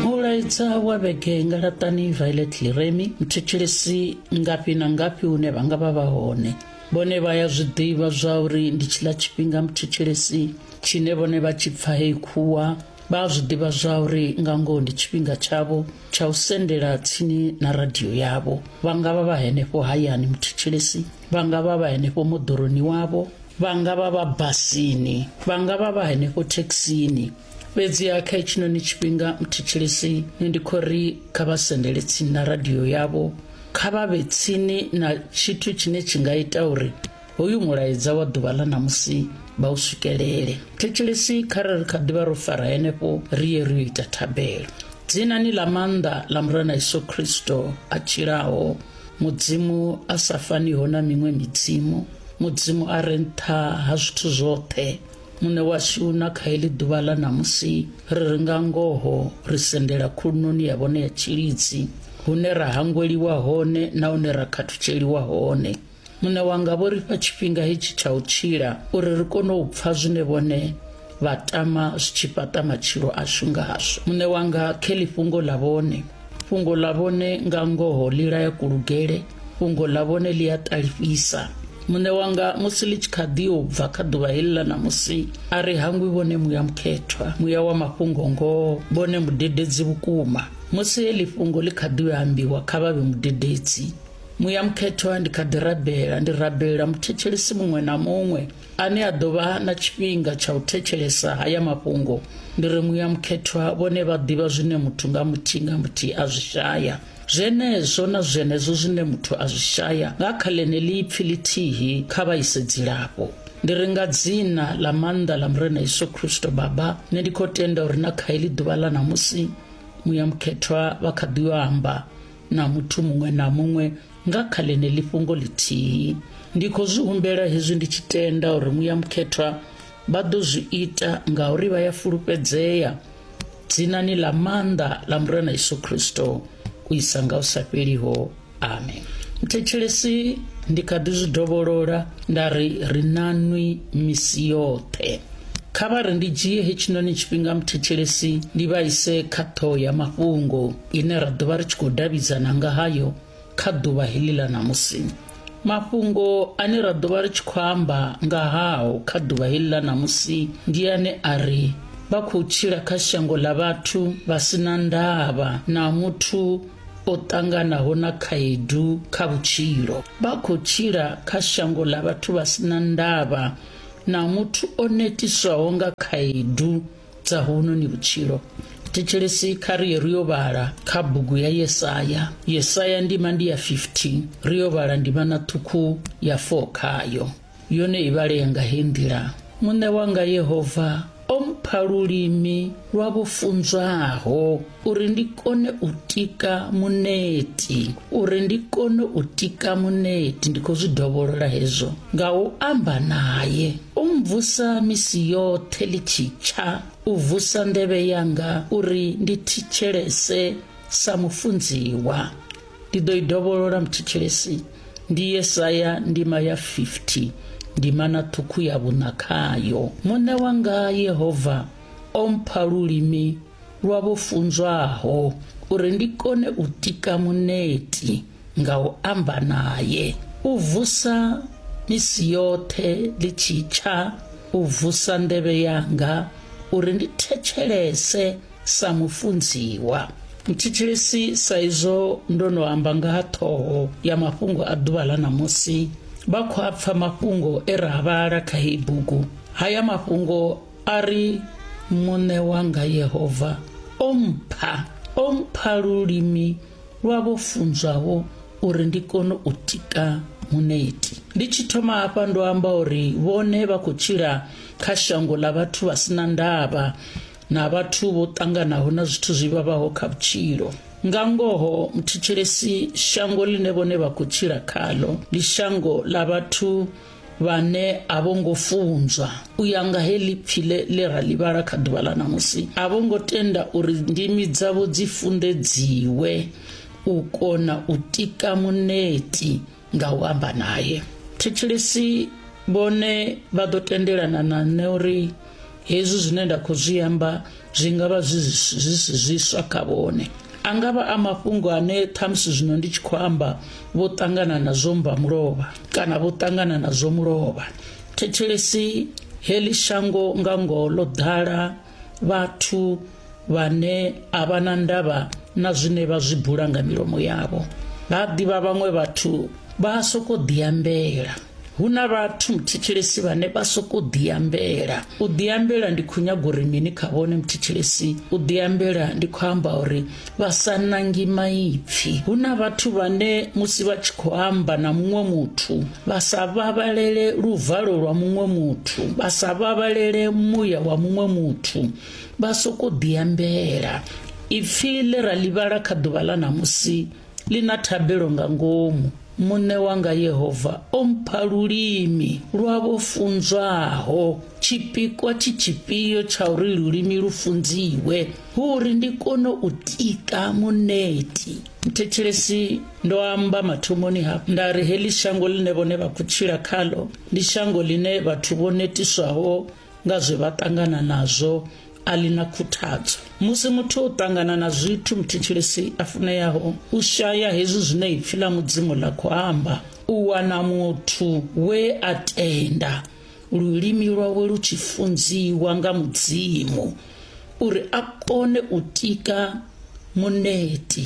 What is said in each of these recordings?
mulaedza wa vhege nga laṱani violet leremi mthetshelesi ngafhi na ngafhi hune vha nga vha vha hone vhone vha ya zwi ḓivha zwa uri ndi tshiḽa tshifhinga mthetshelesi tshine vhone vha tshi pfa heyi khuwa vha zwi ḓivha zwa uri nga ngoho ndi tshifhinga tshavho tsha u sendela tsini na radio yavho vha nga vha vha henefho hayani mthetshelesi vha nga vha vha henefho moḓoroni wavho vha nga vha vha basini vha nga vha vha henefho thekhisini fhedzi ya kha itshinoni tshifhinga muthetshelesi ne ndi khou ri kha vha sendele tsini na radio yavho kha vha vhe tsini na tshithu tshine tshi nga ita uri hoyu mulaedza wa ḓuvha ḽa ṋamusi vha u swikelele thetshelesi kha re ri kha ḓivha ro fara henefho ri ye ri yo ita thabelo dzinani ḽa maanḓa ḽa murena yesu kristo a tshilaho mudzimu a sa faniho na miṅwe midzimu mudzimu a re nṱha ha zwithu zwoṱhe Muṋe washu na kha heḽi ḓuvha ḽa ṋamusi ri ri nga ngoho ri sendela khulunoni ya vhone ya tshilidzi hune ra hangweliwa hone na hune ra khathutsheliwa hone muṋe wanga vho ri fha tshifhinga hetshi tsha u tshila uri ri kone u pfa zwine vhone vha tama zwi tshi fhaṱa matshilo ashu ngazwo muṋe wanga khe ḽifhungo ḽa vhone fhungo ḽa vhone nga ngoho ḽi laya kulugele fhungo ḽa vhone ḽi a ṱalifhisa muṋe wanga musi ḽi tshi kha ḓi u bva kha ḓuvha heḽi ḽa ṋamusi a ri hangwi vhone muya mukhethwa muya wa mafhungo ngoho vhone mudededzi vhukuma musi heḽi fhungo ḽi kha ḓi ambiwa kha vha vhe mudededzi muya mukhethwa ndi kha ḓi rabela ndi rabelela muthethelisi muṅwe na muṅwe ane a ḓo vha na tshifhinga tsha u thetshelesa haya mafhungo ndi ri muya mukhethwa vhone vha ḓivha zwine muthu nga muthihi nga muthihi a zwi shaya zwenezwo na zwenezwo zwine muthu a zwi shaya nga kha ḽeneḽi ipfi ḽithihi kha vha ise dzilafho ndi ri nga dzina ḽa maanḓa ḽa murena yesu kristo baba nṋe ndi khou tenda uri na kha heḽi ḓuvha ḽa ṋamusi muya mukhethwa vha kha ḓi yo amba na muthu muṅwe na muṅwe nga kha ḽeneḽi fhungo ḽithihi ndi khou zwi humbela hezwi ndi tshi tenda uri muya mukhethwa vha ḓo zwi ita ngauri vha ya fulufhedzea dzinani ḽa maanḓa ḽa murena yesu khristo u isa nga u sa fheliho amen mthetshelesi ndi kha ḓi zwi dovholola nda ri ri nanwi misi yoṱhe kha vha ri ndi dzhie hetshinoni tshifhinga mthetshelesi ndi vha ise kha ṱhoho ya mafhungo ine ra ḓovha ri tshi khou davhidzana nga hayo kha ḓuvha heḽi ḽa ṋamusi mafhungo ane ra ḓovha ri tshi khou amba nga hao kha ḓuvha heḽi ḽa ṋamusi ndi ane a ri vha khou tshila kha shango ḽa vhathu vha si na ndavha na muthu o ṱanganaho na khaedu kha vhutshilo vha khou tshila kha shango ḽa vhathu vha si na ndavha na muthu o netiswaho nga khaedu dza huno ni vhutshilo thetshelesi kha ri ye ri yo vhala kha bugu ya yesaya yesaya ndima ndi ya 15 ri yo vhala ndima na ṱhukhu ya 4 khayo yone i vhalea nga he nḓila muṋe wanga yehova o mpha lulimi lwa vho funzwaho uri ndi kone u tika muneti uri ndi kone u tika muneti ndi khou zwi dovholola hezwo nga u amba naye u mvusa misi yoṱhe ḽi tshi tsha u vusa nḓevhe yanga uri ndi thitshelese sa mufunziwa ndi ḓo i dovholola muthitshelesi ndi yesaya ndima ya 50 ndima na ṱhukhu ya vhuṋa khayo muṋe wanga yehova o mpha lulimi lwa vho funzwaho uri ndi kone u tika muneti nga u amba naye u vusa misi yoṱhe ḽi tshi tsha u vusa nḓevhe yanga uri ndi thetshelese sa mufunziwa mthetshelesi sa izwo ndo no amba nga ha ṱhoho ya mafhungo a ḓuvha ḽa ṋamusi vha khou a pfa mafhungo e ra vhala kha heyi bugu haya mafhungo a ri muṋe wanga yehova o mpha o mpha lulimi lwa vho funzwaho uri ndi kone u tika muneti ndi tshi thoma hafha ndo amba uri vhone vha khou tshila kha shango ḽa vhathu vha sina ndavha na vhathu vho ṱanganaho na zwithu zwi vhavhaho kha vhutshilo nga ngoho muthetshelesi shango ḽine vhone vha khou tshila khalo ndi shango ḽa vhathu vhane a vho ngo funzwa u ya nga he lipfi le le ra livhala kha ḓuvha ḽa ṋamusi a vho ngo tenda uri ndimi dzavho dzi funḓedziwe u kona u tika muneti nga u amba naye thetshelesi vhone vha ḓo tendelana na nṋe uri hezwi zwine nda khou zwi amba zwi nga vha zwi si zwiswa kha vhone a nga vha a mafhungo ane ṱhamusi zwino ndi tshi khou amba vho ṱangana na zwo mba mulovha kana vho ṱangana na zwo mulovha thetshelesi heḽi shango nga ngoho ḽo ḓala vhathu vhane a vha na ndavha na zwine vha zwi bula nga milomo yavho vha ḓivha vhaṅwe vhathu vha a sokou ḓiambela hu na vhathu muthetshelesi vhane vha sokou ḓiambela u ḓiambela ndi khou nyaga uri mini kha vhone muthetshelesi u ḓiambela ndi khou amba uri vha sa nangi maipfi hu na vhathu vhane musi vha tshi khou amba na muṅwe muthu vha sa vhavhalele luvalo lwa muṅwe muthu vha sa vhavhalele muya wa muṅwe muthu Vha sokou ḓiambela. Ipfi ḽe ra ḽi vhala kha ḓuvha ḽa ṋamusi ḽi na thabelo nga ngomu. Muṋe wanga Yehova o mpha lulimi lwa vho funzwaho. Tshipikwa tshi tshifhio tsha uri lulimi lu funziwe? Hu uri ndi kone u tika muneti. Mthetshelesi ndo amba mathomoni hafhu nda ri heḽi shango ḽine vhone vha khou tshila khaḽo ndi shango ḽine vhathu vho netiswaho nga zwe vha ṱangana nazwo a ḽi na khuthadzo musi muthu o ṱangana na zwithu muthetshelesi a funeyaho u shaya hezwi zwine ipfi ḽa mudzimu ḽa khou amba u wana muthu we a tenda lulimi lwawe lu tshi funziwa nga mudzimu uri a kone u tika muneti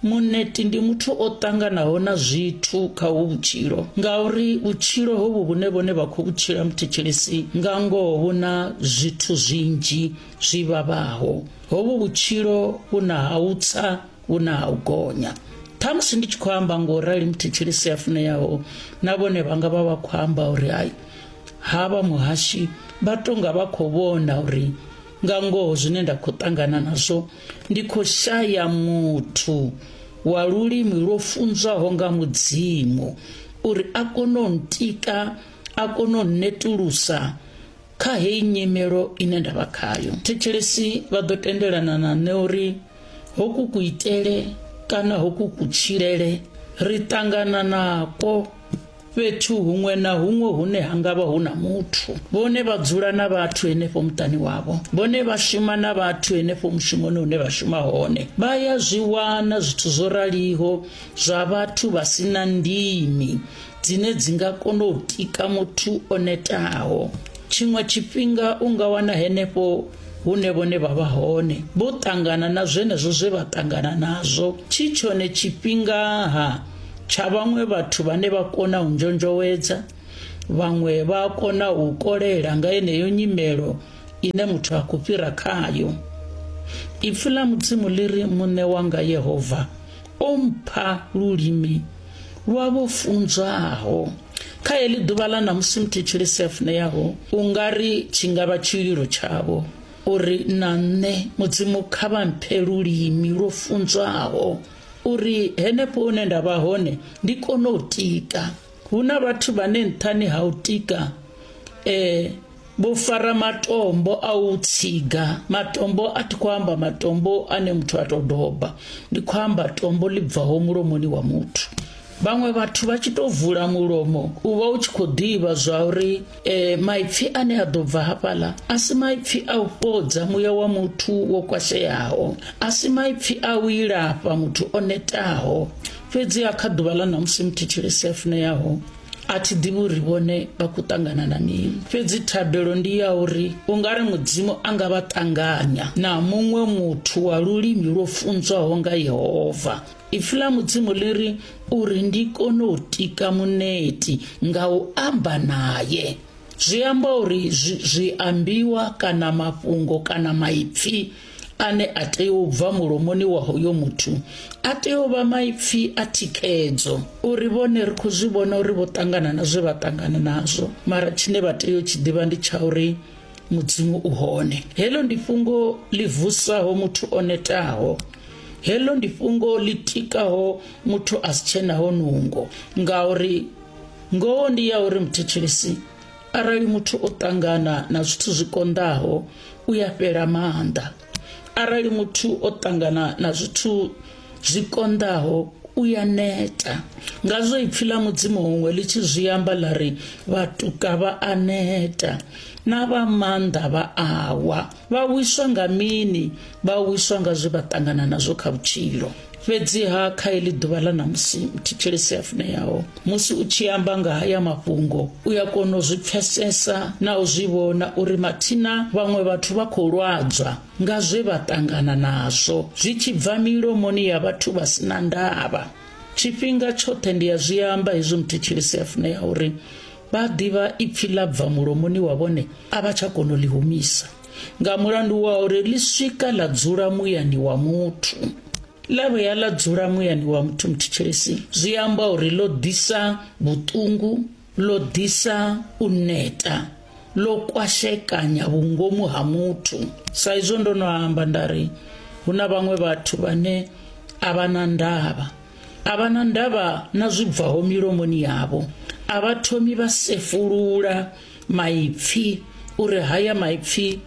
Muṋeti ndi muthu o ṱanganaho na zwithu kha hu vhutshilo ngauri vhutshilo hovhu vhune vhone vha khou vhutshila muthetshelesi nga ngoho vhu na zwithu zwinzhi zwi vhavhaho hovhu vhutshilo vhu na ha u tsa vhu na ha u gonya ṱhamusi ndi tshi khou amba ngo rali muthetshelesi a funeyaho na vhone vha nga vha vha khou amba uri hai havha muhashi vha tonga vha khou vhona uri nga ngoho zwine nda khou ṱangana nazwo ndi khou shaya muthu wa lulimi lwo funzwaho nga mudzimu uri a kone u ntika a kone u netulusa kha heyi nyimelo ine nda vha khayo thetshelesi vha ḓo tendelana na nṋe uri hoku kuitele kana hoku kutshilele ri ṱangana nako fhethu huṅwe na huṅwe hune ha ngavha hu na muthu vhone vha dzula na vhathu henefho muṱani wavho vhone vha shuma na vhathu henefho mushumoni hune vha shuma hone vha ya zwi wana zwithu zwo raliho zwa vhathu vha si na ndimi dzine dzi nga kona u tika muthu o netaho tshiṅwe tshifhinga u nga wana henefho hune vhone vha vha hone vho ṱangana na zwenezwo zwe vha ṱangana nazwo tshi tshone tshifhingaha tsha vhaṅwe vhathu vhane vha kona u nzhonzhowedza vhaṅwe vha a kona u kolela nga yeneyo nyimelo ine muthu a khou fhira khayo ipfi ḽa mudzimu ḽi ri muṋe wanga yehova o mpha lulimi lwa vho funzwaho kha heḽi ḓuvha ḽa ṋamusi muthetshelesi a funeyaho u nga ri tshi nga vha tshililo tshavho uri na nṋe mudzimu kha vha mphe lulimi lwo funzwaho uri henefho hune nda vha hone ndi kone u tika hu na vhathu vhane nṱhani ha u tika eh vho fara matombo a u tsiga matombo a thi khou amba matombo ane muthu a tou doba ndi khou amba tombo ḽi bvaho mulomoni wa muthu vhaṅwe vhathu vha tshi tou vula mulomo u vha u tshi khou ḓivha zwa uri e, maipfi ane a ḓo bva hafhaḽa a si maipfi a u fhodza muya wa muthu wo kwasheaho a si maipfi a u ilafha muthu o netaho fhedzi a kha ḓuvha ḽa ṋamusi muthitshili si a funeaho a thi ḓivhi uri vhone vha khou ṱangana na mini fhedzi thabelo ndi ya uri u nga ri mudzimu a nga vha ṱanganya na muṅwe muthu wa lulimi lwo funzwaho nga yehova Ipfi ḽa Mudzimu ḽi ri uri ndi kone u tika muneti nga u amba naye. Zwi amba uri zwi ambiwa kana mafhungo kana maipfi ane a tea u bva mulomoni wa hoyo muthu a tea u vha maipfi a thikhedzo uri vhone ri khou zwi vhona uri vho ṱangana na zwe vha ṱangana nazwo mara tshine vha tea u tshi ḓivha ndi tsha uri mudzimu u hone heḽo ndi fhungo ḽi vusaho muthu o netaho heḽo ndi fhungo ḽi tikaho muthu a si tshenaho nungo ngauri ngoho ndi ya uri muthetshelesi arali muthu o ṱangana na zwithu zwi konḓaho u ya fhela maanḓa arali muthu o ṱangana na zwithu zwi konḓaho u ya neta ngazwo ipfi ḽa mudzimu huṅwe ḽi tshi zwi amba ḽa ri vhatuka vha a neta na vha maanḓa vha awa vha wiswa nga mini vha wiswa nga zwe vha ṱangana nazwo kha vhutshilo fhedziha kha iḽi ḓuvha ḽa ṋamusi mthetshelesi a funeaho musi u tshi amba nga haya mafhungo u ya kona u zwi pfesesa na u zwi vhona uri mathina vhaṅwe vhathu vha khou lwadzwa nga zwe vha ṱangana nazwo zwi tshi bva milomoni ya vhathu vha si na ndavha tshifhinga tshoṱhe ndi a zwi amba hezwi muthetshelesi a funea uri vha ḓivha ipfi ḽa bva mulomoni wa vhone a vha tsha kona u ḽi humisa nga mulandu wa uri ḽi swika ḽa dzula muyani wa muthu ḽa vhuya ḽa dzula muyani wa muthu muthetshelesi zwi amba uri ḽo ḓisa vhuṱungu ḽo ḓisa u neta ḽo kwashekanya vhungomu ha muthu sa izwo ndo no amba nda ri hu na vhaṅwe vhathu vhane a vha na ndavha a vha na ndavha na zwi bvaho milomoni yavho a vha thomi vha sefulula maipfi uri haya maipfi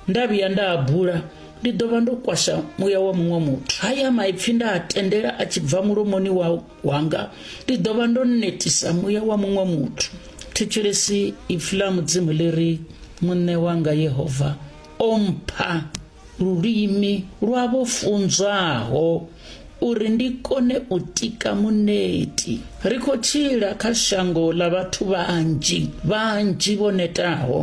nda vhuya nda a bula ndi ḓo vha ndo kwasha muya wa muṅwe muthu haya maipfi nda a tendela a tshi bva mulomoni wau wanga ndi ḓo vha ndo netisa muya wa muṅwe muthu thetshelesi ipfi ḽa mudzimu ḽi ri muṋe wanga yehova o mpha lulimi lwa vho funzwaho uri ndi kone u tika muneti ri khou tshila kha shango ḽa vhathu vhanzhi vhanzhi vho netaho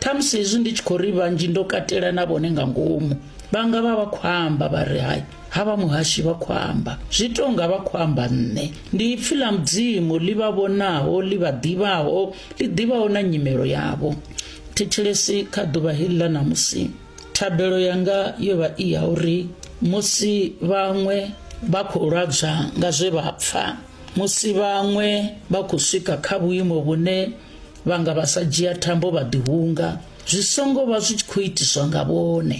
ṱhamusi hezwi ndi tshi khou ri vhanzhi ndo katela na vhone nga ngomu vhanga vha vha khou amba vha ri hai Havha muhashi vha khou amba, zwi tou nga vha khou amba nṋe. Ndi ipfi ḽa Mudzimu ḽi vha vhonaho, ḽi vha ḓivhaho, ḽi ḓivhaho na nyimelo yavho. Thetshelesi kha ḓuvha heḽi ḽa ṋamusi. Thabelo yanga yo vha i ya uri musi vhaṅwe vha khou lwadzwa nga zwe vha pfa, musi vhaṅwe vha khou swika kha vhuimo vhune vha nga vha sa dzhia thambo vha ḓihunga, zwi songo vha zwi tshi khou itiswa nga vhone.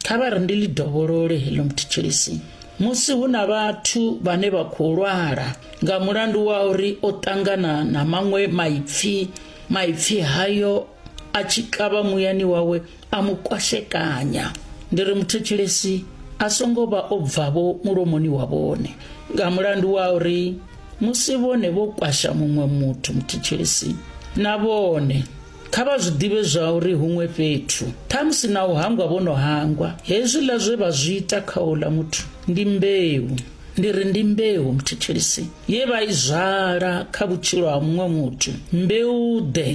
Kha vha ri ndi ḽi dovholole heḽo muthetsheliso musi hu na vhathu vhane vha khou lwala nga mulandu wa uri o ṱangana na maṅwe maipfi maipfi hayo a tshi kavha muyani wawe a mu kwashekanya ndi ri muthetsheli a songo vha o bvavho mulomoni wa vhone nga mulandu wa uri musi vhone vho kwasha muṅwe muthu muthetsheli na vhone Kha vha zwi ḓivhe zwauri huṅwe fhethu, ṱhamusi na u hangwa vho no hangwa, hezwiḽa zwe vha zwi ita kha uḽa muthu ndi mbeu, ndi ri ndi mbeu muthethelisi, ye vha i zwala kha vhutshilo ha muṅwe muthu, mbeu-ḓe,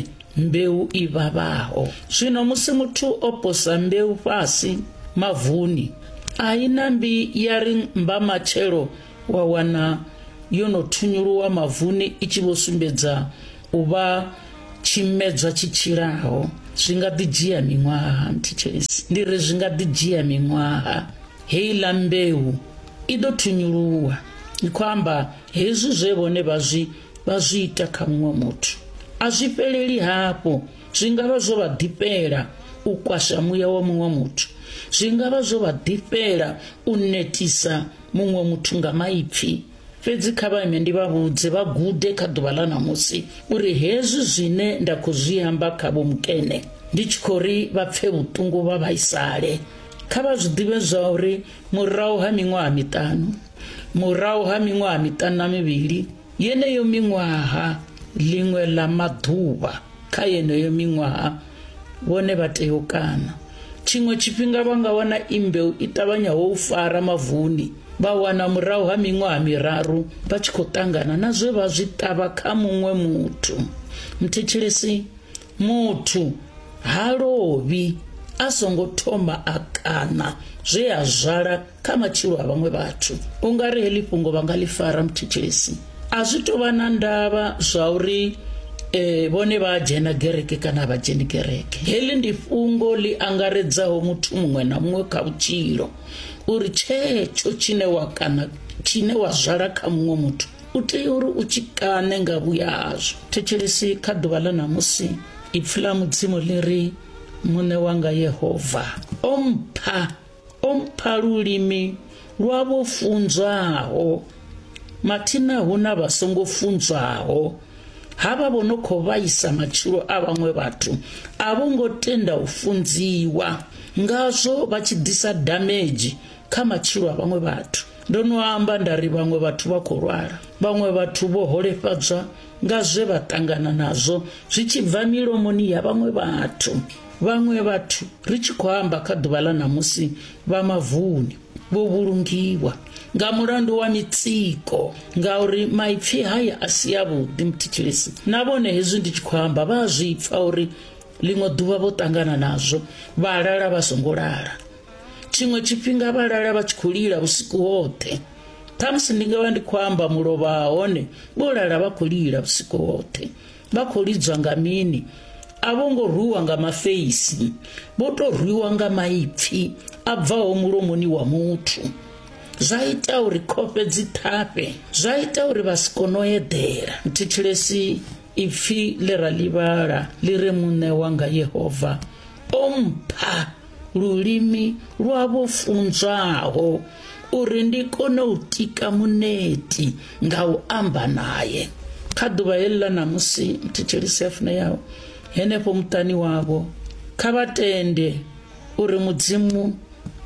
mbeu i vhavhaho. Zwino musi muthu o posa mbeu fhasi mavuni, a i nambi ya ri mbamatshelo wa wana yo no thunyuluwa mavuni i tshi vho sumbedza u vha tshimedzwa tshi tshilaho zwi nga ḓi dzhia miṅwaha mthitshesi ndi ri zwi nga ḓi dzhia miṅwaha heiḽa mbeu i ḓo thunyuluwa i khou amba hezwi zwe vhone vha zwi vha zwi ita kha muṅwe muthu a zwi fheleli hafho zwi nga vha zwo vha ḓifhela u kwasha muya wa muṅwe muthu zwi nga vha zwo vha ḓifhela u netisa muṅwe muthu nga maipfi fhedzi kha vha ime ndi vha vhudze vha gude kha ḓuvha ḽa ṋamusi uri hezwi zwine nda khou zwi amba kha vho mukene ndi tshi khou ri vha pfe vhuṱungu vha vhaisale kha vha zwi ḓivhe zwa uri murahu ha miṅwaha miṱanu murahu ha miṅwaha miṱanu na mivhili Yeneyo miṅwaha, ḽiṅwe ḽa maḓuvha kha yeneyo miṅwaha, vhone vha tea u kana. Tshiṅwe tshifhinga vha nga wana imbeu i ṱavhanyaho u fara mavuni, vha wana murahu ha miṅwaha miraru vha tshi khou ṱangana na zwe vha zwi ṱavha kha muṅwe muthu. Mthetshelesi, muthu ha lovhi a songo thoma a kana zwe a zwala kha matshilo a vhaṅwe vhathu u nga ri heḽi fhungo vha nga ḽi fara muthethesi a zwi tou vha na ndavha zwa uri eh vhone vha dzhena gereke kana vha dzheni gereke heḽi ndi fhungo ḽi angaredzaho muthu muṅwe na muṅwe kha vhutshilo uri tshetsho tshine wa kana tshine wa zwala kha muṅwe muthu u tea uri u tshi kaṋe nga vhuya hazwo thetshelesi kha ḓuvha ḽa ṋamusi ipfi ḽa mudzimu ḽi ri muṋe wanga yehova o mpha o mpha lulimi lwa vho funzwaho mathina hu na vha songo funzwaho havha vho no khou vhaisa matshilo a vhaṅwe vhathu a vho ngo tenda u funziwa ngazwo vha tshi ḓisa damage kha matshilo a vhaṅwe vhathu ndo no amba nda ri vhaṅwe vhathu vha khou lwala vhaṅwe vhathu vho holefhadzwa nga zwe vha ṱangana nazwo zwi tshi bva milomoni ya vhaṅwe vhathu Vhaṅwe vhathu, ri tshi khou amba kha ḓuvha ḽa ṋamusi, vha mavuni vho vhulungiwa nga mulandu wa mitsiko ngauri maipfi haya a si avhuḓi muthetshelesi na vhone hezwi ndi tshi khou amba vha a zwi pfa uri ḽiṅwe ḓuvha vho ṱangana nazwo vha lala vha songo lala tshiṅwe tshifhinga vha lala vha tshi khou lila vhusiku hoṱhe khamusi ndi nga vha ndi khou amba mulovha hone vho lala vha khou lila vhusiku hoṱhe Vha khou lidzwa nga mini? A vho ngo rwiwa nga mafeisi, vho tou rwiwa nga maipfi a bvaho mulomoni wa muthu. Zwa ita uri khofhe dzi ṱhafhe, zwa ita uri vha si kone u eḓela. Thetshelesi ipfi ḽe ra ḽivhala ḽi re muṋe wanga Yehova o mpha lulimi lwa vho funzwaho uri ndi kone u tika muneti nga u amba naye kha ḓuvha heḽila ṋamusi mthetshelisi a funeyaho henefho muṱani wavho kha vha tende uri mudzimu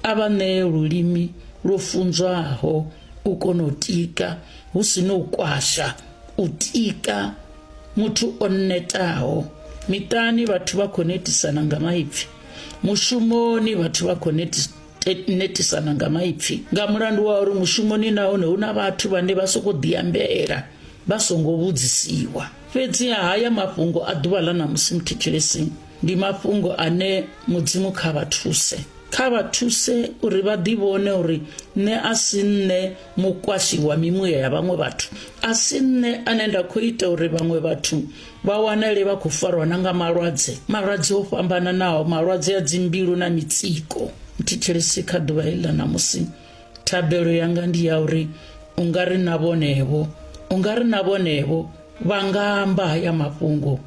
a vha ṋee lulimi lwo funzwaho u kona u tika hu si no u kwasha u tika muthu o netaho miṱani vhathu vha khou netisana nga maipfi mushumoni vhathu vha khou netisana nga maipfi nga mulandu wa uri mushumoni nahone hu na vhathu vhane vha sokou ḓiambela vha songo vhudzisiwa fhedziha haya mafhungo a ḓuvha ḽa ṋamusi muthetshelesini ndi mafhungo ane mudzimu kha vha thuse kha vha thuse uri vha ḓivhone uri nṋe a si nṋe mukwashi wa mimuya ya vhaṅwe vhathu a si nṋe ane nda khou ita uri vhaṅwe vhathu vha wanale vha khou farwa na nga malwadze malwadze o fhambananaho malwadze a dzimbilu na mitsiko thetshelesi kha ḓuvha heḽi ḽa ṋamusi thabelo yanga ndi ya uri u nga ri na vhonevho u nga ri na vhonevho vha nga amba haya mafhungo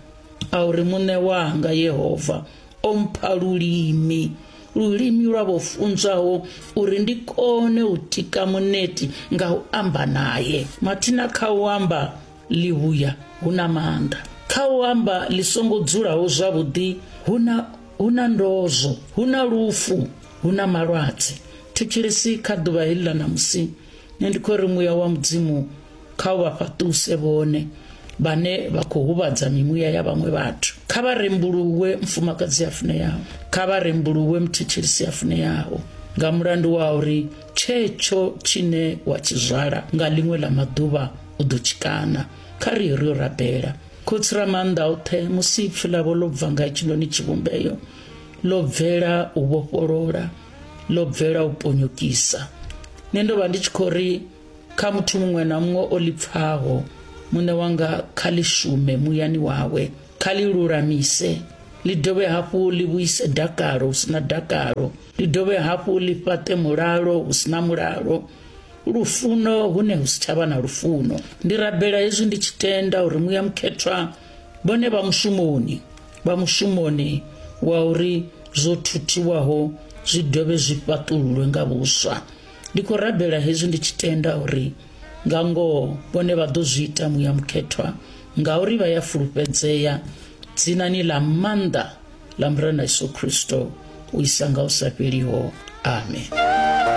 a uri muṋe wanga yehova o mpha lulimi lulimi lwa vho funzwaho uri ndi kone u tika muneti nga u amba naye mathina kha u amba Ḽivhuya hu na maanḓa. Kha u amba ḽi songo dzulaho zwavhuḓi hu na hu na ndozwo, hu na lufu, hu na malwadze. Thetshelesi kha ḓuvha heḽi ḽa ṋamusi. Nṋe ndi khou ri muya wa Mudzimu kha u vha fhaṱuse vhone vhane vha khou huvhadza mimuya ya vhaṅwe vhathu. Kha vha rembuluwe mufumakadzi a funeaho. Kha vha rembuluwe muthetshelisi a funeaho nga mulandu wa uri tshetsho tshine wa tshi zwala nga ḽiṅwe ḽa maḓuvha u ḓo tshikana kha ri ri yo rabela khotsi ra maanḓa oṱhe musi ipfi ḽavho ḽo bva nga hetshinoni tshivhumbeyo ḽo bvela u vhofholola ḽo bvela u ponyokisa nṋe ndo vha ndi tshi khou ri kha muthu muṅwe na muṅwe o ḽi pfaho muṋe wanga kha ḽi shume muyani wawe kha ḽi lulamise ḽi dovhe hafhu ḽi vhuise dakalo hu si na dakalo ḽi dovhe hafhu ḽi fhaṱe mulalo hu si na mulalo lufuno hune hu si tsha vha na lufuno ndi rabela hezwi ndi tshi tenda uri muya mukhethwa vhone vha mushumoni vha mushumoni wa uri zwo thuthiwaho zwi dovhe zwi fhaṱululwe nga vhuswa ndi khou rabela hezwi ndi tshi tenda uri nga ngoho vhone vha ḓo zwi ita muya mukhethwa ngauri vha ya fulufhedzea dzinani ḽa maanḓa ḽa murena yesu khristo u isa nga u sa fheliho amen